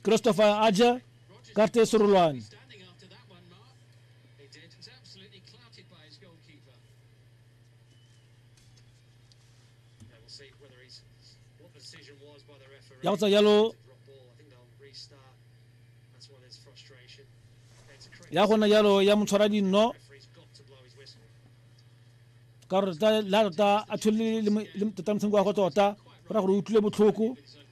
christopher aja karte surulwani ya go tsa yalo ya gona yalo ya motshwara dinno ka gore la tota a thole le tota motshameko wa go tota go ra gore o utlwile botlhoko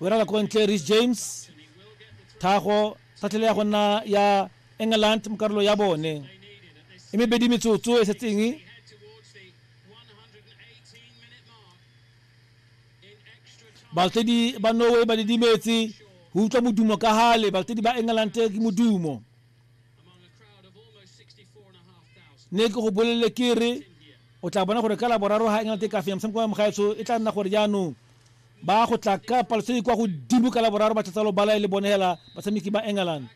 o dira ko ntle Reece James thago sa tlhele ya go nna ya England mo karolo ya bone e mebedi metsotso e setseng balatedi ba norway ba didimetse go utlwa modumo ka gale balatedi ba england ke modumo ne ke go bolelele ke re o tla bona gore ka laboraro ga england e ka fenya motshameko wa mogaetsho e tla nna gore jaanong ba go tla ka palo tse di kwa godimo ka laboraro ba tlatsa lobala e le bone hela batshameki ba england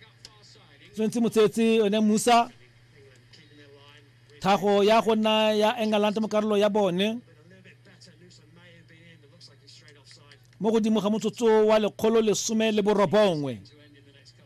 tshwanetse motseetse one musa thago ya go nna ya england mo karolo ya bone mo godimo ga motsotso wa lekgolo lesome le borobongwe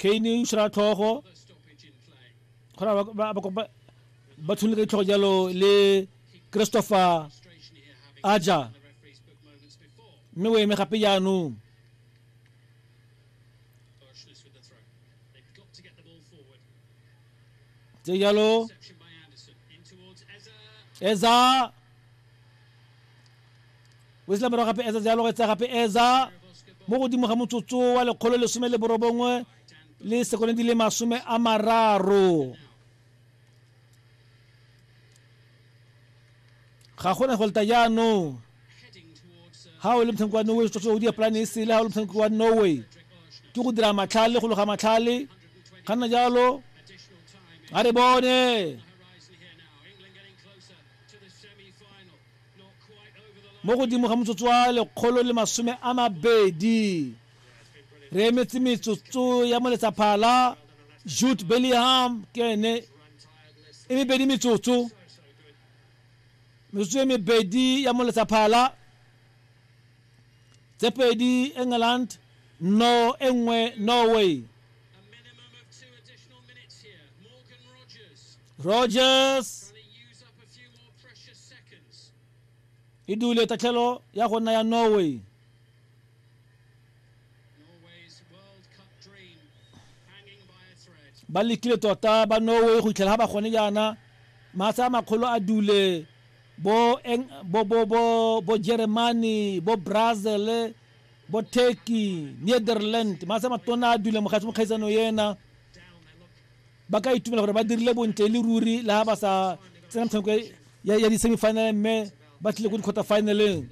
kane o tshwara tlhogo gona ba tshwene ka ditlhogo jalo le christopher aja mme o eme gape jaanong tse jalo eza Wesley morago gape Eza jalo etsa gape Eza mo godimo ga motsotso wa lekgolo lesome le borobongwe le sekone di le masome a mararo ga gona go leta jaanong ga o le motshameki wa norway tsotso o diapolane e sele ga o le motshameki wa norway ke go dira matlhale go loga matlhale ga nna jalo ga re bone mo godimo ga motsotso wa lekgolo le masome a mabedi re emetse metsotso ya moletsaphala jude bellingham ke ene e mebedi metsotso metsotso e mebedi ya moletsaphala tse pedi england no e nngwe norway rogers e dule tatlhelo ya go nna ya norway ba lekile tota ba norway go itlhela ga ba gone jaana matsha a makgolo a dule bo, eng, bo, bo, bo, bo germany bo brazil bo turkey netherland matsha matona a dule mokgaitsano ena Ba ka itumela gore ba dirile bontle e le ruri le ha ba sa tsena metshameko ya di-semifinal mme ba tlile ko di-quarter finaleng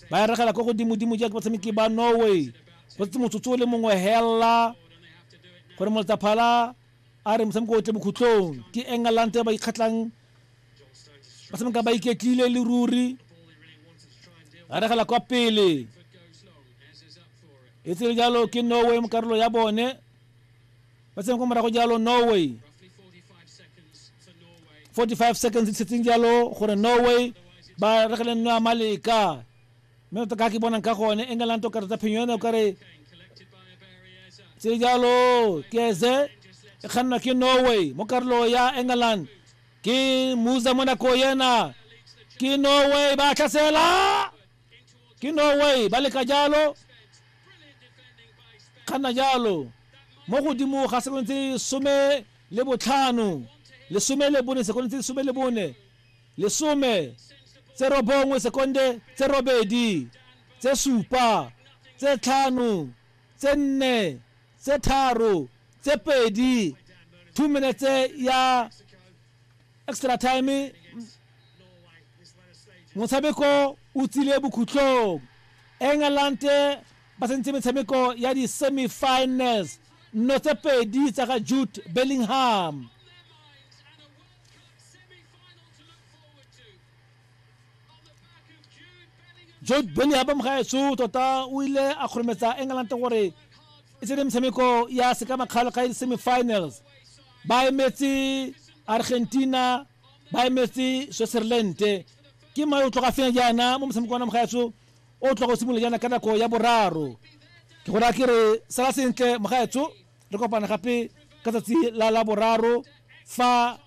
ba ya regela ko godimodimo jaaka batshameki ba norway go tse motsotso o le mongwe hela gore moltaphala a re motshameko o tle bokhutlong ke england ba ikgatlhang ba tshameka ba iketlile le ruri ba regela kwa pele e tsere jalo ke norway mo karolo ya bone ba tsene ko morago jalo norway 45 seconds di setseng jalo gore norway ba regele nno ya maleka mme tota ka ke bonang ka gone england o kare tsa phenyo yone o kare tse jalo keze e kgannwa ke norway mo karolo ya england ke musa monako yena ke norway ba tlhasela ke norway ba leka jalo kganna jalo mo godimo ga sekono tse some le botlhano lesome le bone sekono tse lesome le bone lesome tse robongwe sekonde tse robedi tse supa tse tlhano tse nne tse tharo tse pedi two minutes ya extra time motshameko o tsile bokhutlong england ba tsentse metshameko ya di-semifinals nno tse pedi tsa ga jude bellingham jude bellingham ba mogaetsho tota o ile a kgorometsa england gore e tsene metshameko ya sekamakgalo ga e semi-finals ba emetse argentina ba emetse switzerland ke mae o tloga fenya jaana mo motshameko wa na mogaetsho o tloga o simolola jaana ka nako ya boraro ke go raya ke re sala sentle mogaetsho re kopana gape ka tsatsi la la boraro fa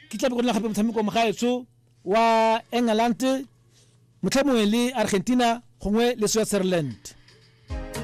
ke tlabe go nna gape motshameko mo gaetsho wa england motlha mongwe le argentina gongwe le switzerland